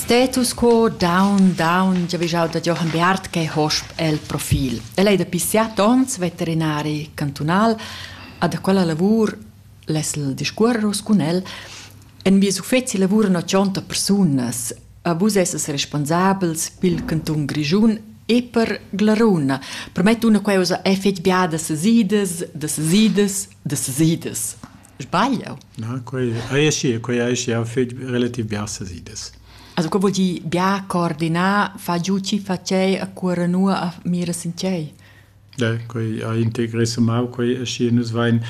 Status quo down down giavischau da Jochen Beat che hosp el profil. El ei dapi siat onns veterinari cantunal, a da quella lavur lesel discuorros cun el. En vies uffeci lavuran 80 persunas. A vus esses responsabels pil cantun Grischun e per Glaruna. Promet una queusa è fetg biada sesidas, da sesidas, da sesidas. Sbaglio? Na, quei ei schi, quei ei schi, ha fetg relativ bien ses ides. Also, co vuol dir bien coordinar, fa giù ci facei a cuore nua a mira sinchei? Ja, quei ha integrissemau, quei è schi, nus vein,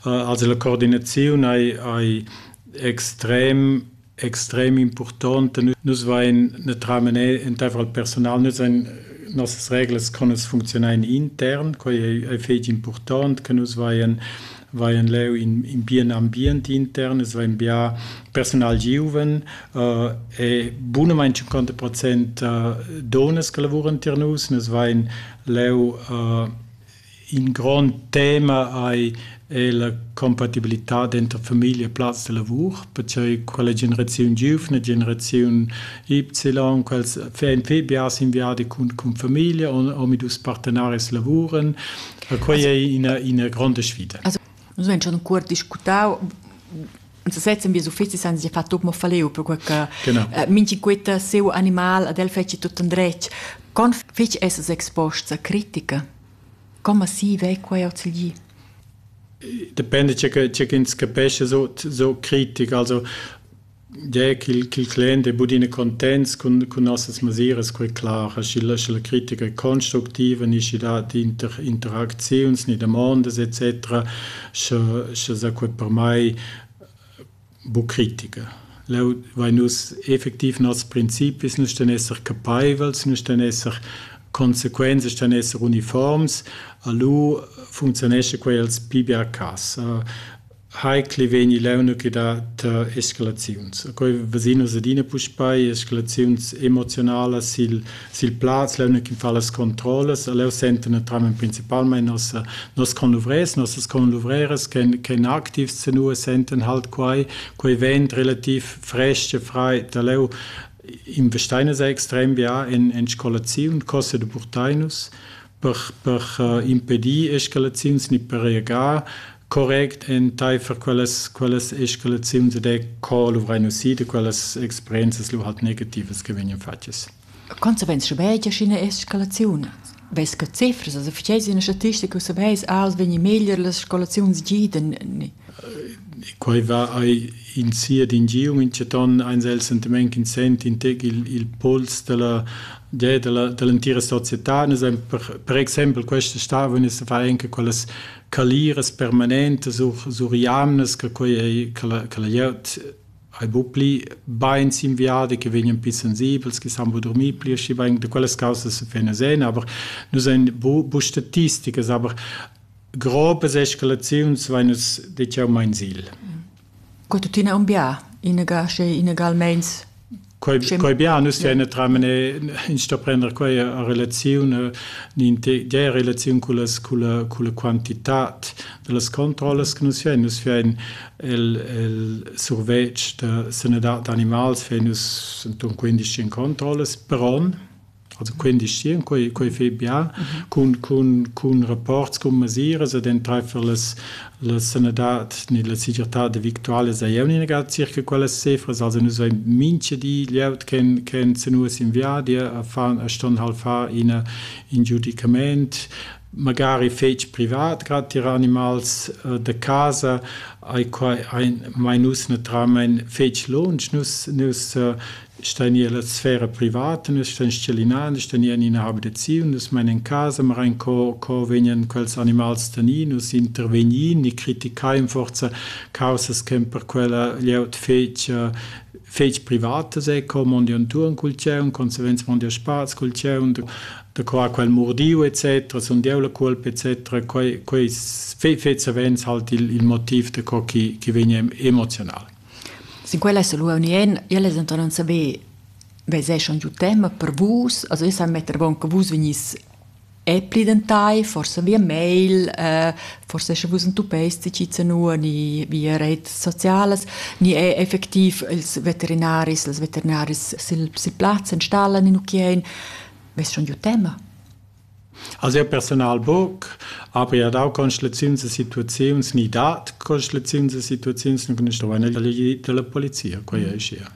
also la coordinaziun ei, ei extrem extrem impurtont e nus vain natiralmaing entaifer il persunal nus hain nossas reglas co nus funcziunain intern, quai ei fetg impurtont che nus vain vain leu in, in bien ambient intern, es vain bia persunal giuven uh, e bunamain 50 procent uh, donas che lavuran tier nus, nus vain leu uh, In grond tema ei ei la compatibilitad denter famiglia e plaz da lavur, pertgei quella generaziun giuvna, generaziun Y, quels vein pli biars in viadi cun, cun famiglia, omadus partenaris lavuran. Quei ei ina, ina gronda sfida. Also, nus vein schon cuort discutau in sesez in bies uffecis han sia fatg mo faleu perquei che eh, minchi quetta seu animal ad el feci tut en dretg con fich esses exposts a critica come si vei quei ozilgi Depende c'è che c'è ins capesce so so critic also der qu'il qu'il clen de budine contents con con nossas masiras quei klar aschi la la critica è constructiva ni da die Inter Interaktions ni der Mondes etc Sche sche sa cuort per mai buc critica. Leu vein nus effectiv nos principis, nus ston esser capeivels, nus ston esser consequents, ston esser uniforms, a lu funzionescha quei els pli bia cass. Heikli vegni leunc da tar escalaziuns. Quei vesin nus adina puspei, escalaziuns emozionalas sil sil plaz leu che fa las controllas leu senten naturalmein principalmein nos nos conluvrers nossas conluvreras che che aktivs senua senten halt quei quei vent relativ frestg e frei da leu in vesteiner sei extrem bia en en scolaziun cosse de burtainus per, per impedir escalaziuns ni per reagar correct enteifer quellas, quellas escalaziuns ed è co luvrein usì da quellas experienzas lu halt negativas che vegnan fatgas. Consequenza schabegia sch'ina escalaziun vess che cifras, also verstehst du eine Statistik, wo du weißt, alles wenn je meglier las Eskalations giden. Quai va ai in sia d'ingiu in ceton ein sel sentiment in sent in teg il, il puls della della dell'entira società nus ein per, per exempel questa stavon is fa anche quellas caliras permanentes sur sur jamnas che quei ei che la che la glieud hai bu pli bein inviada che vegnan pli sensibels che san bu dormir pli schi bein de quelles causas se fena sen aber nus ein bu bu statisticas aber grobe escalazions vai nus de jau mein sil Co tuttina un bia? Inaga sche inagalmeins Quei, quei bia, nus ja. ina tramene in sto prender quei a relaziun in de relaziun con las con la con la quantitat delle controlles che nus fein nus fein el el survetsch da sanidad animals fein nus enton 15 controlles però Also quindisschien, quei, quei fei bien cun, cun, cun rapports cun mesiras ed enteifer las, la sanadad ni la segirtad victuala sei jeu negar circa quellas cifras. Also nus vein mincha di glieud che, che senus in viadi a fan, a ston hal far ina, in giudicament magari fetg privat, grad tier animals äh, da casa, ai quai ein mai nus naturalmein fetg lunsch, nus nus äh, Sta nia la sfera privata, nus stan schellinan, nus sta nia en ina abitaziun, nus main en casa, ma rein co, co vegnan quels animals tani, nus intervegnin e criticain forza causas ch'en per quella glieud fetg fetg privatas, ecco, mondi antuorn cul tgieun, consequenza mondi a spaz cul tgieun, da qua quel mordiu et cetera, sun dieu la cuolpa et cetera, quei quei fet savens halt il il motiv da co chi chi vegn emoziunal. Sin quel esa lura unien. Ella es denton non saver veseschan giu tema per vus. Also io sa metter avon che vus vegnis epli dentai, forsa via mail, forsa escha vus entuppeis tgi zanua ni via reits socialas, ni effectiv ils veterinaris, las veterinaris sil plaz, installan in ucchien. Ves schon giu tema? Ha siu personal buc aber dau constelaziuns e situaziuns ni dat constelaziuns e situaziuns nua stuein elegir dalla polizia, quei ei schia.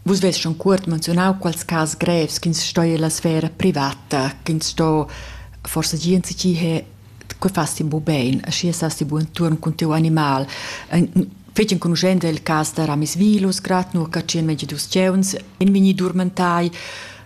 Vus vess schon cuort menzionau quals cas grevs ch'ins sto ella sfera privata, ch'ins sto forsa gia ensi he che fast ti bu bein, schi sast ti bu inturn cun tiu animal. Fetg enconuschent è il cas da Ramis Vilus, grad nur catschien megi dus tgeuns, in vegni durmentai,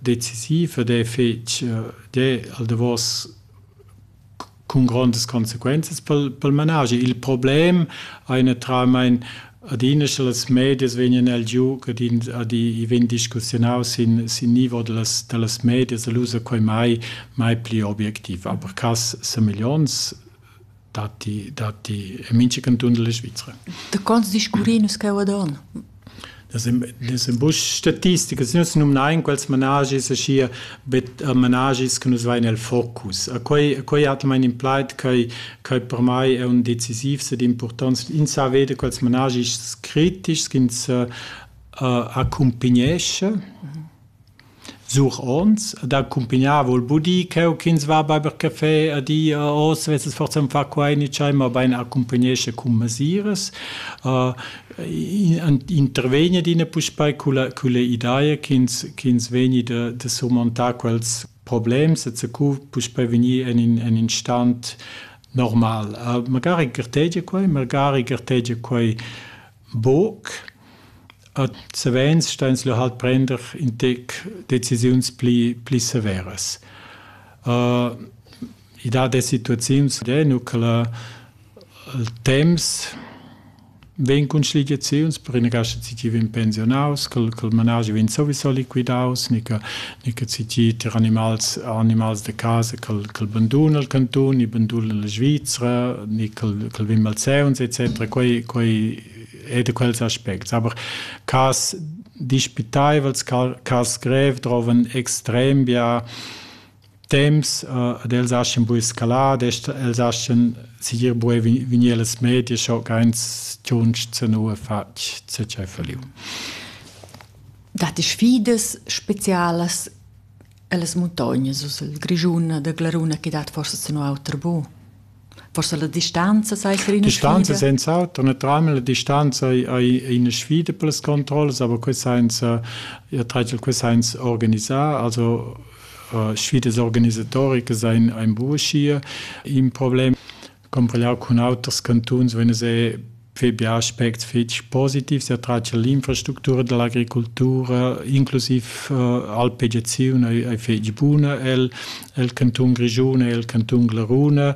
decisiv ed è fetg d'he al davos cun grondas consequenzas pel pel managi. Il problem ei natiralmein adina sche las medias vegnan el giu ed in ad i vegn discussiunaus sin sin nivo dallas dallas medias, el ussa quei mai mai pli objectiv. Per cass semeglionts datti, datti e mincha canton della Svizra. Da quants discurri nus cheu ad on? Das sind buc statistiche, nus numnain quels managis aschi bet managis che nus vain el focus. A quei a quei hat mein in plaid che che per mai è un decisiv sed importanz. Ins sa vede quels managis critics ins uh, accompagnesce Sur onns ed accumpignar vul budir cheu ch'ins va beiber caffè a di a Os vesses forsa aunc far quei ni tschei, mobein accumpignescha cun mesiras. Intervegni adina puspei culla culla ideia ch'ins ch'ins vegni da da surmontar quels problems e zacu puspei vegnir en in en in stan normal. Magari gartegia quei, magari gartegia quei Buc. Ad savens sta ins lu halt prender in tec decisiuns pli pli severas. I dat e situaziuns eh nu che la il temps vegn cun schligiaziuns, per ina cascha tgi vegn pensionaus, ch'el ch'el manaschi vegn sowieso liquidaus, ni che e che citi tir animals animals de casa che che banduna il cantun e banduna la Svizzera ni che che vin malseuns etc quei quei è de quels aspects aber cas dispitaivels cas grev trovan extrem bia temps uh, ad els aschen bu escalat els aschen sigir bu vinir las media scho keins tunsch zu nur fatg zu faliu dat sfidas specialas ellas muntognas us el Grischun da Glaruna che dat forsa sen auter bu. Forsa la distanza sai ser ina distanza senza auto naturalmente la distanza è una sfida per las controlles aber quest senza ihr teitel quest senza organisiert also uh, sfidas organisatoriche sein ein burschier im Problem Comparegliau cun auters cantuns vegn ei fai bia aspects fetg positivs e tratg l'infrastructura dall'agricultura, inclusiv uh, alpegiaziun ei, ei fetg buna el, el canton Grischun e el canton Glaruna.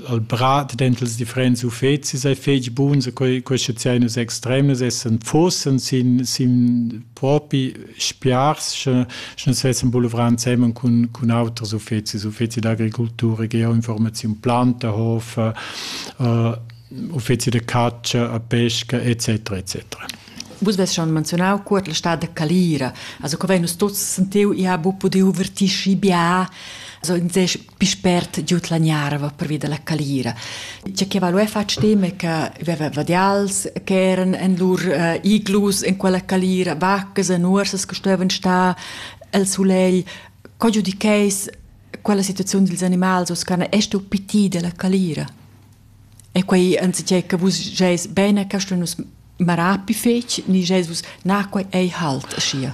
Al brat dentels differents uffecis ei fetg buns, quei, queste zeines extremes essen fossen sin, sin propi spiars sche sche sessen boulevrà insemmen cun cun auters uffecis uffeci d'agricoltura ge informaziun planta hof äh, uffeci de caccia a pesca etc etc Vus ves schon menzionau cuort la stad de Calira, also co vei nus tuts sentiu, ia bu pudiu vertisci bia, also in sech Pispert giud la gnarva pervi dalla calira. Tge che va lu fatg dem è che veva vadials che eran en lur uh, iglus en quella calira, vaccas e nuorsas che stuevan star el sulegl. Co giudicheis quella situaziun dils animals os can est u piti della calira? E quei anzitgei che vus geis bene, che nus marapi fetg, ni geis vus na quei ei halt aschia?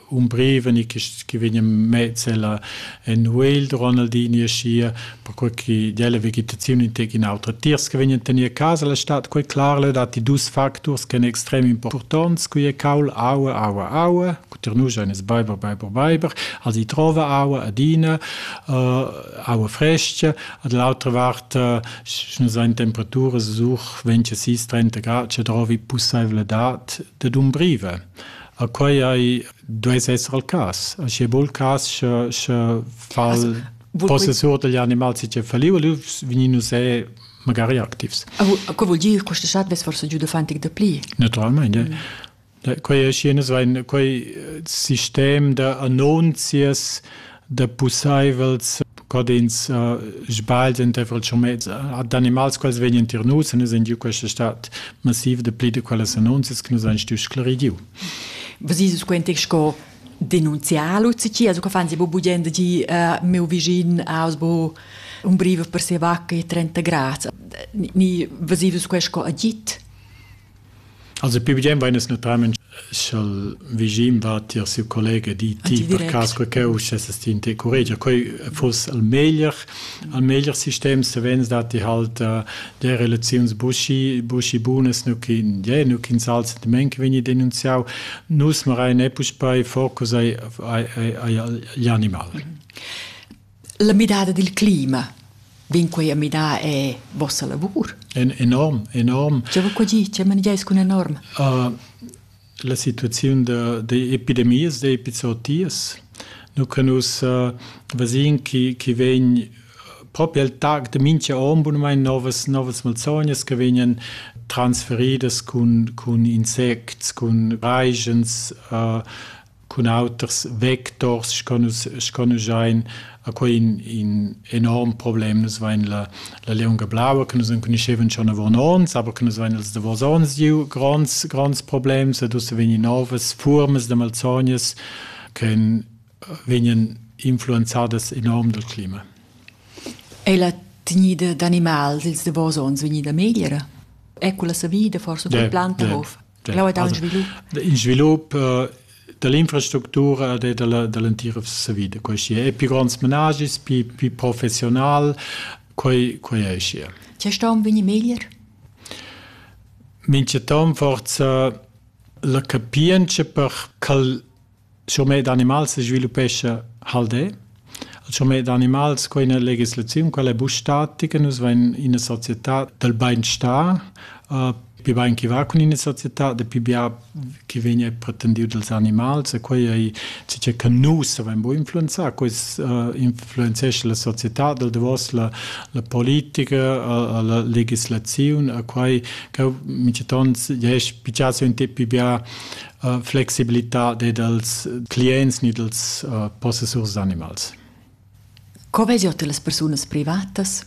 un brev ni che vegn mezz ella en Wales Ronaldi ni schia perquei che della vegetazione in tec in autra tiers che vegn tenir casa la stat quei clar le dati dus factors che extrem importants qui è caul aua aua aua kuter nu eines Weiber Weiber Weiber als i trova aua adina uh, aua fresche ad l'altra vart uh, schon sein temperature such 20 30 grad ce trovi pusaivle dat de dum breve A quai ei duess esser il cass. Sche bol cass sche sche fal possessur degli animals che faliu lu vegnin nus è magari activs. Co vuol dir questa chat vess forse giu dafantig da pli? Naturalmente. Mm. Quei è schienes ein quei sistem da annunzias da pussaivels ch'ins sbaglia entaifer il schumez ad animals quels vegnan tier nus en in giu questa stat massiv de pli de quellas annunzias che nus han stuiu sclarir giu. Was ist es quentig sco denunziar Luzi, also che fan sie bubugliendo di meu vicin aus bo un brive per se vacca e 30 grads. Ni was ist es questo agit? Also pivigen vain es natüralment scha'l vischin va tier siu collega di ti per cas que ch'eu uschessas ti in te curregia quai fuss al meglier al meglier sistem savens da ti halt de relaziuns buschi buschi bunas nu chi je nu chi sal sentiment che vegni denunziau nus marai ne puspei focus ai ai ai, ai, ai animal La midada dil clima vegn quei a midar è vossa lavur? En enorm, enorm. Tge va qua gi? Tge manegiais cun enorm? Uh, la situaziun d'epidemias, d'epizootias. Nu che nus uh, vasin che, che vegn proprio al tag de mincha om bunmain novas novas malsognas che vegnan transferidas cun cun insects, cun raigens uh, cun auters vectors sco nus, sco nus ein a quei in, in enorm problem. Nus vein la, la lieunga blaua, che nus enconuschevan schon avon ons, aber che nus vein als davos ons giu gronds, gronds problems ed ussa vegnan novas furmas da malsognas che vegnan influenzadas enorm dal clima. È la tegnida d'animals ils davos ons vegnida megliera? È quella savida forse yeah, quella planta yeah. of? in svilup da l'infrastructura e da l'entira savida. Questi è più grands menagis, più, più professional, quei, quei è și. Ce sta un veni meglier? Mince tom forza la capienza per cal Schurmet d'animals sviluppescha Haldè. Il schurmet d'animals, quai è ina legislaziun, quella è buc statica, nus vain ina società dal bainstar, pi bain chi va cun ina società, dapi bia chi vegn è pretendiu dals animals e quai ei tgei che nus avain bu influenzà, quest influenzescha la società dal davos la la politica, la legislaziun e quai cheu mintgaton jes piace un tep pi bia flexibilità dei dals clients ni dals uh, possessurs d'animals. Co vegiot las persunas privatas?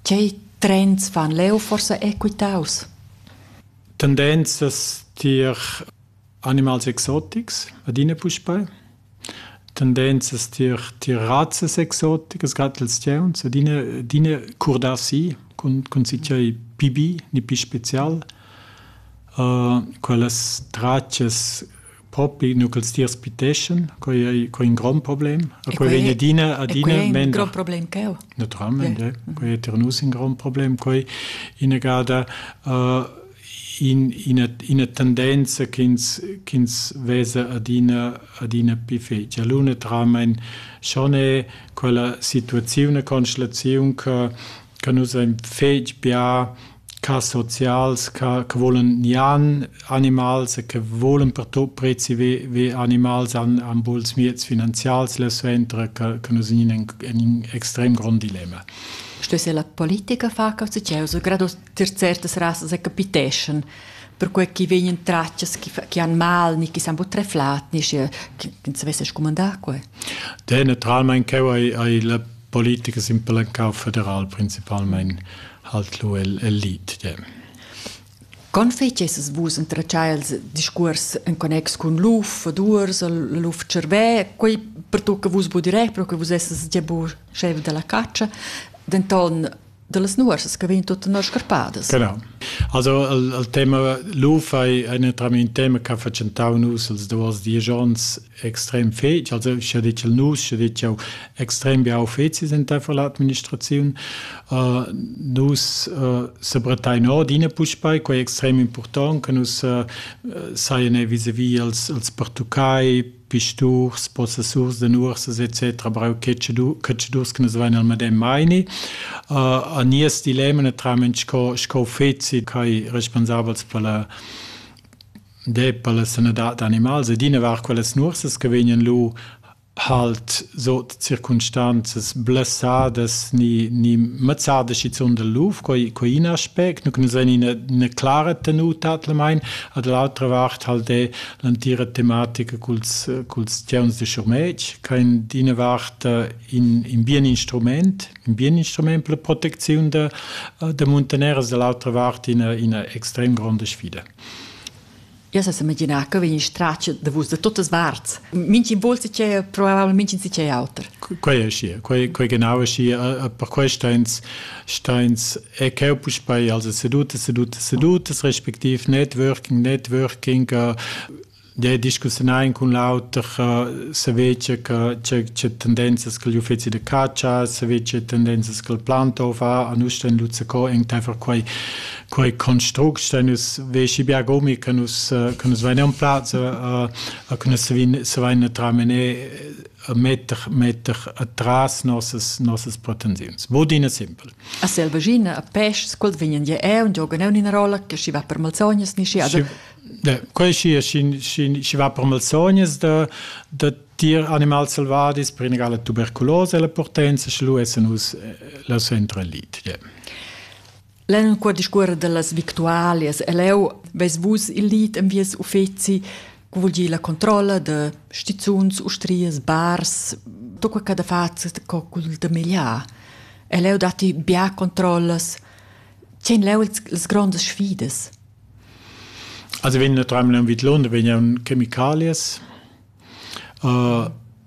Tgei trends fan leu forsa equitaus? Tendenzas tier animals exotics adina puspei. Tendenzas tier tier razzas exoticas grad els tgauns ed ina d'ina curdar si cun cun tgei pibi ni pi special. Quellas tratgas propi nu ch'els tiers piteschan, quai ei quai ein grond problem. E quei vegn adina adina mender. Grond problem cheu. Naturalment, ja. Quei ei tier nus in grond problem. Quei ina gada in, ina, ina tendenza ch'ins, ch'ins vesa adina, adina più fece. L'unetramain schon è quella situaziun e constellaziun che, che nus ein fetg bia ca socials che, che volen nian animals e che volen per tot prezi ve, ve animals an, an buls miez finanzials la suentra che, che nus in in, in extrem grond dilemma. Što se la politika faka u se čeo su grados tier certas rasas e capiteschan perquei ch'i vegnan tratgas chi, chi han mal ni chi san buc treflat ni sche ins savesse scumandar quei. De naturalmein cheu ei, ei la politica simpelcau federal principalmein halt lu el, el lid. De. Con fecesses vus entratschai els discuors en connex cun luf ad ursel, luf cervè, quei per tu che vus budi re, però che vus esses già bu chef della caccia, denton dallas nuorsas che vegn tuttenor scarpadas. Genau. Also il, il tema luf è un tema che ha facentau nus els duas dies ons extrem fetg, also sche ditg il nus, sche ditg jau extrem bia uffecis in der l'administrazione. Uh, nus uh, sebretai nord in puspei, quei extrem important, che nus uh, saien vis-a-vis als, als Portugai, pisturs, possessurs de nuorsas etc. brau cacciadurs che nus vein al medem meini. Uh, a nies dilemma naturalment sco, sco feci kai responsabels per la de per la sanadad d'animals ed ina var quelles nuorsas che vegnan lu halt so circumstanzas blessadas ni ni mazzada schizun del luf coi coi in aspect nu que nus vein ina una clara tenuta at la mein ad l'altra vart halt de l'antira tematica culs, culs tgeuns de schurmetg, che in d'ina vart in, in bien instrument, in bien instrument per la protecziun de, de muntaneras, dall'altra vart ina, ina extrem gronda sfida. Io se immaginava che vegni straccio da vus da tutte parts. Minchi volse c'è probabilmente c'è auter. Quei è schi, quei, quei genau è schi, per questo ins Steins e cheu puspei also seduta seduta sedutas respektiv networking networking uh, de discussiunar cun l'auter uh, se vece che c'è tendenzas che gli uffizi de caccia se vece tendenzas che il plantov ha a nus sten luzza co in tefer quei quei construct sten us veci bia gomi che nus uh, che nus veniam plazza uh, uh, che nus se vin se vin tramene metter, metter atras nossas, nossas pretensiuns. Bodina simpel. A selvaschina, a peschs, quels vegnan ja eu, und jogan eu in rolla, che si va per malsognas, ni si ada. Da, quei si, si va per malsognas, da, da tier animals selvadis per inegala tuberculose la potenza, sche lu essen us eh, la centra lit. Yeah. L'enqua discuorra dallas victualias e leu veis vus il lid en vies uffeci, co vul dir la controlla da stizuns, ustrias, bars, tot quei che da fat co cul da megliar. E leu datti bia controllas. Tien leu las grondas sfidas. Also wenn nur dreimal am Vidlon, wenn ja un Chemikalias,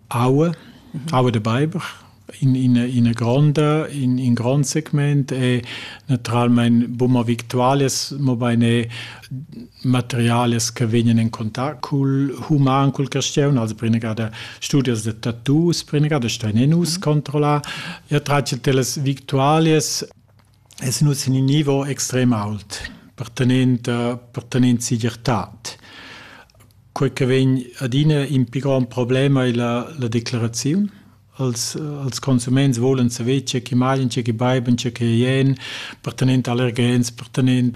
aua, aua da beiber in ina ina gronda in in grond segment e naturalmein buma victualias mobein e materialias che vegnan en contact cul human cul caschiun also prenegada studios da tattoos prenegada stein nus controllar e tratg dellas victualias Es nus in ün nivo extrem ault pertanent pertanent segirtad. Quei che vegn adina in pi grond problem ei la la declaraziun. Als als consuments volan saver tge che mangien, tge che beiben, tge che ien, pertanent allergens, pertanent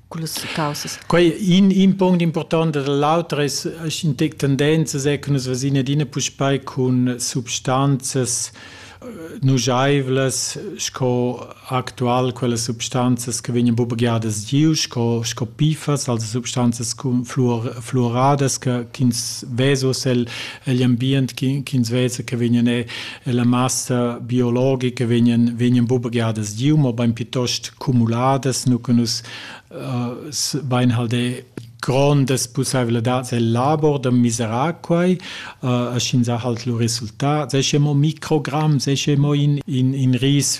cullas caussas. Quei in, in punct important da l'auter es in tec tendenzas è che nus vasin adina puspei cun substanzas nujaivlas sco actual quelle substanzas che vegnan bubagiadas giu sco sco pifas also substanzas con fluor fluoradas che ch'ins vesos el egl ambient ch'ins vesa che vegnan e la massa biologica vegnan vegnan bubegadas giu, ma bein piuttost cumuladas, nu che nus uh, bein halde grondas pussaiveladads el labor da miserar quai, uh, a sch'ins ha halt lu resultat, se che mo microgram, se che mo in, in, in ris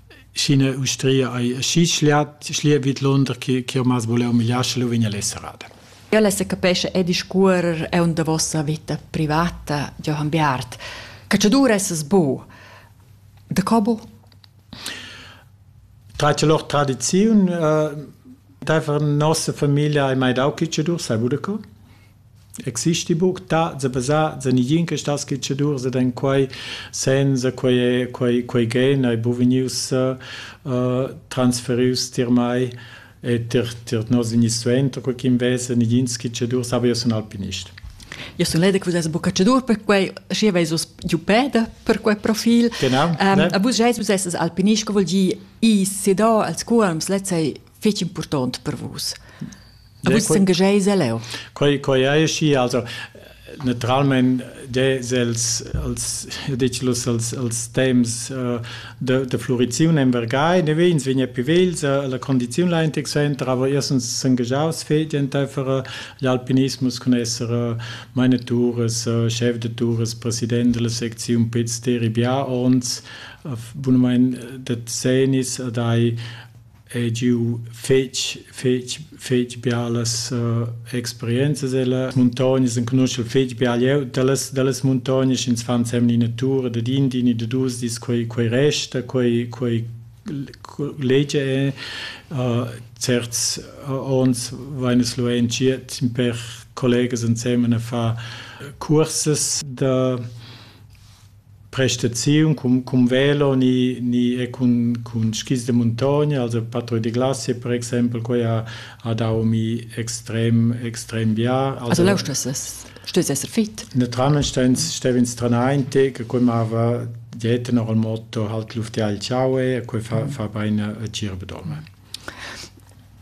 Sch'ina ustria ei aschi schliat, schliat vidlunder che ch'jeu maz vuler humiliar, sche lu vegn el esserada. Ella secapescha e discuorer aunc da vossa vita privata, Johann Beat. Catschadur essas bu. Da co bu? Tratg lor tradiziun. Uh, Dafür nossa Familie hai mai dau Kitschedurs, sei Budako? Existi buc ta za basar za negin che stat schetschadurs ed en quei senza quei è quei quei gen ei bu vegnius uh, transferius tier mei e tier tier nos inis suenter co ch'in vesa negins schetschadurs aber io sun alpinist. Io sun leda che vus eis buca cadur per quei, schi veis vus giu peda per quei profil. Genau. Ähm, ne? A vus eis vus eis alpinist, che vogl dir i sedar als cuolms, lezei fetg impurtont per vus. Aber es engagei leu. Quei quei ei schi also naturalmente des els els dicilos els els temps uh, de, de fluriziun in Vergai ne vegns vegna più vels uh, la condiziun la intic center aber erstens s'engagiaus fetg entfer uh, gli alpinismus con esser uh, manetures uh, chef de tours president della secziun Piz Teribià ons uh, bunamein de zenis uh, dai Ei giu fetg, fetg, fetg bialas experienzas ella muntognas, enconuschel fetg bia glieud dallas, dallas muntognas, ins fa ensemen ina tur dad in di ni da dus dis, quei, quei resta, quei, quei legia ei. certs onns vein nus lu entschiet in per collegas ensemen a far cursas da prestaziun cun cun velo ni ni e cun cun skis da muntogna also patrull da glacia per exempel quei ha ha dau mi extrem extrem bien also leu stuess esser fit Naturalmein stein stev'ins stranainti che quei mava dietten or il motto halt Luft ja ciao e quei fa fa bein a gir bedorme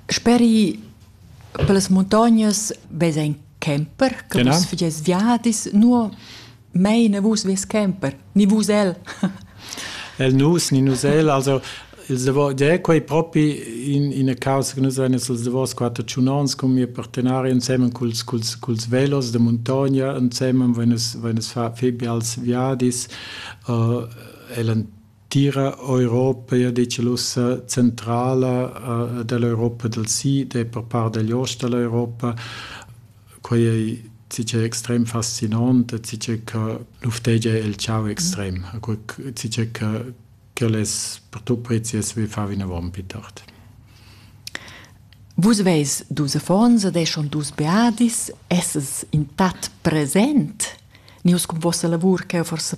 Speri per las muntognas vesa in Camper, che genau. vus fagies viadis, nur mei ne vus vies camper, ni vus el. el nus, ni nus el, also ils davos, de quei propi in, in causa che nus ein ils davos quattro ciunons con mia partenari insieme culs, culs, culs velos de montagna, insieme wenn es, wenn es fa, fi bials viadis, uh, eh, el Tira Europa ei detg ussa centrala dall'Europa dal sid e per part digl ost dall'Europa. Quei ei tgei extrem fascinant e tgei che luftegia il tgau extrem, tgei che quellas per tu prezias vi far vinavon pli tard. Vus veis dus affons ed eschon dus beadis, esses in tat present, nius cun vossa lavur cheu forsa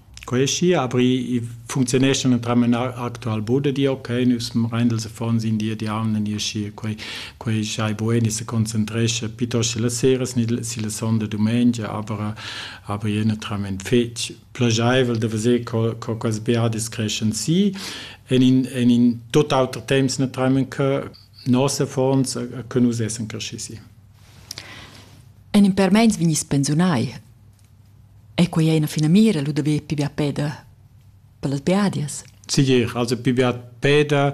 Quai è schi, aber i funcziuneschan entramen actual bod e di ok, nus rein els affons in di e di aun e ni schi quei quei schai bueni se concentrescha piuttosto la sera si la sonda dumengia, aber aber je entramen fetg plagiaivel da veser co co quas beadis creschan si en in en in tot auter temps entramen che noss affons che nus essen cresci si. En in per meins vegnis pensiunai Ei quei ei ina finamira, lu da ver pli bia peda per las biadias? Segir, also pli bia peda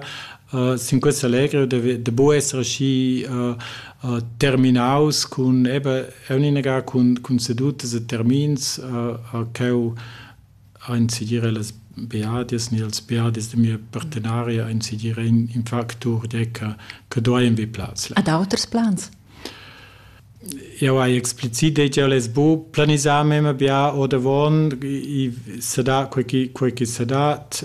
uh, sin questa allegra da, da bu esser aschi uh, uh, terminaus cun eben, erninaga cun, cun sedutas e termins uh, uh, cheu Aint segira las beadias ni als beadis da mia partenaria ein segira in factur tgei che che dueien be plaz là. Ad auters plans? Jau hai explicit detg jau less bu planisar memia bia ordavon, i sa da quei chi quei chi sa dat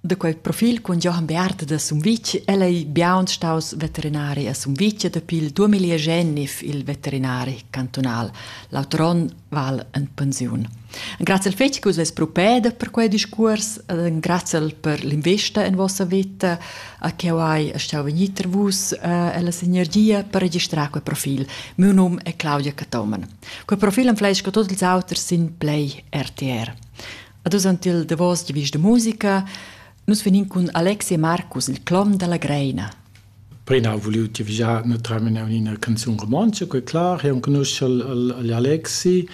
Da quel profil cun Johann Beat da Sumvitg el ei biaun staus veterinari a Sumvitg dapi il 2009 il veterinari cantunal. L'auter onn val en pensiun. Grazie al fetg che vus propeda per quei discurs, grazie per l'investa en vossa vita, a che hai stau vegnir tra vus e eh, la sinergia per registrare quel profil. Mio nome è Claudia Catomen. Quel profil am fleisca tots ils auters sin Play RTR. Ad usant il davos giavisch de musica, nus venin cun Alex e Marcus il clom dalla Greina. Prima ho voliu giavischar ne terminau ina canzun romanza, quei clar, e on conosce l'Alexi,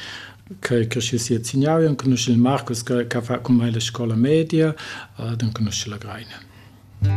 che cresce si a Zignau, e on conosce il Marcus che fa con me la scuola media, ad on conosce la Greina.